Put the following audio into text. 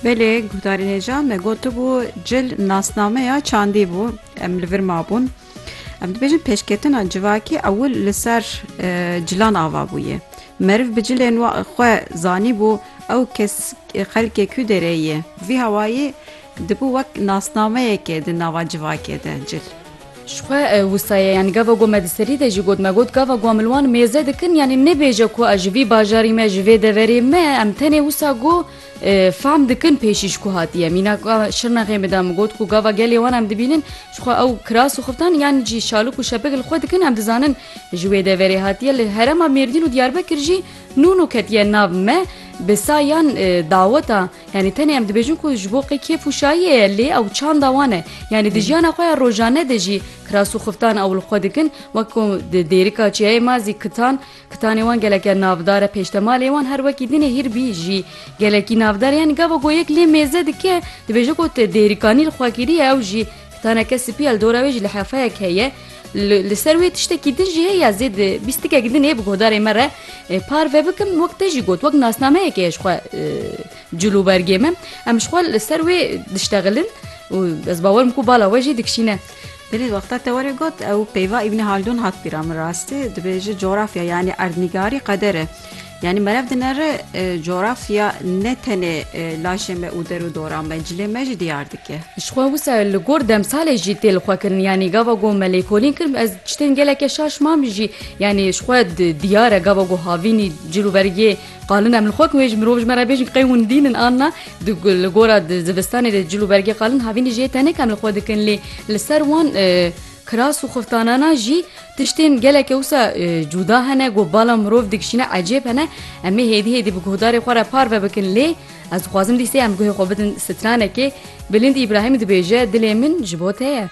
Belê guhdarên hêja me gotibû cil nasnameya çandî bû em li vir mabûn. Em dibêjin pêşketina civakî ewil li ser e, cilan ava bûye. Meriv bi cilên xwe zanî bû ew kes e, xelkê ku derê ye. Vî hawayê dibû wek nasnameyekê di nava civakê de cil. Ji xwe wisa ye yanî gava ku me di serî de jî got me got gava ku em li wan mêze dikin yanî nêbêje ku ez ji vî bajarî me ji vê deverê me em tenê wisa ku fehm dikin pêşîş ku hatiye mîna şirnexê min de min got ku gava gelê wan em dibînin ji xwe ew kiras û xiftan yan jî şalik û şepik li xwe dikin em dizanin ji wê deverê hatiye li herema mêrdîn û diyarbekir jî nûn û ketiye nav me bi sayan daweta Yanî tenê em dibêjin ku ji bo qê kêf û şayiyê ye lê ew çanda wan e. Yanî di jiyana xwe ya rojane de jî kiras û xiftan ew li xwe dikin wek ku di dêrika çiyayê ma zî kitan kitanê wan geleke navdar e pêştemalê wan her wekî dinê hîrbî jî gelekî navdar e yanî gava ku yek lê mêze dike dibêje ku te dêrîkanî li xwe kiriye ew jî Teneke spî li dora wê jî lihefeyek heye. Li ser wê tiştekî din jî heye zêd bîstikek din ê bi godarê me re parve bikim wek te jî got wek nasnameyekê heye ji xwe cil û bergê me em ji xwe li ser wê diştexilin û ez bawerim ku bala we jî dikişîne. Belê wexta te were got ew peyva Îbnî Haldûn hat bîra min rastî dibêje cografya yanî erdnîgarî qeder e. Yanî merev dinere cografya ne tenê laşê me û der û dora me, cilê me jî diyar dike. Jixwe wisa li gor demsalê jî tê li xwe kirin yanî gava ku me lêkolîn kirin ez tiştên geleke şaş mam jî yanî ji xwe diyar e gava ku havînî cil û bergê qalin em li xwe kiwê ji mirov ji me re bêjin qey hûn dînin an na li gora zivistanê de cil û bergê qalin havînî jê tenik em li xwe dikin lê li ser wan Kiras û xiftanana jî tiştên gelekê wisa cuda hene ku bala mirov dikişîne ecêb hene. Em ê hêdî hêdî bi guhdarê xwe re parve bikin lê ez dixwazim dîsê em guhê xwe bidin stranekê. Bilind Îbrahîm dibêje, Dilê min ji bo te ye.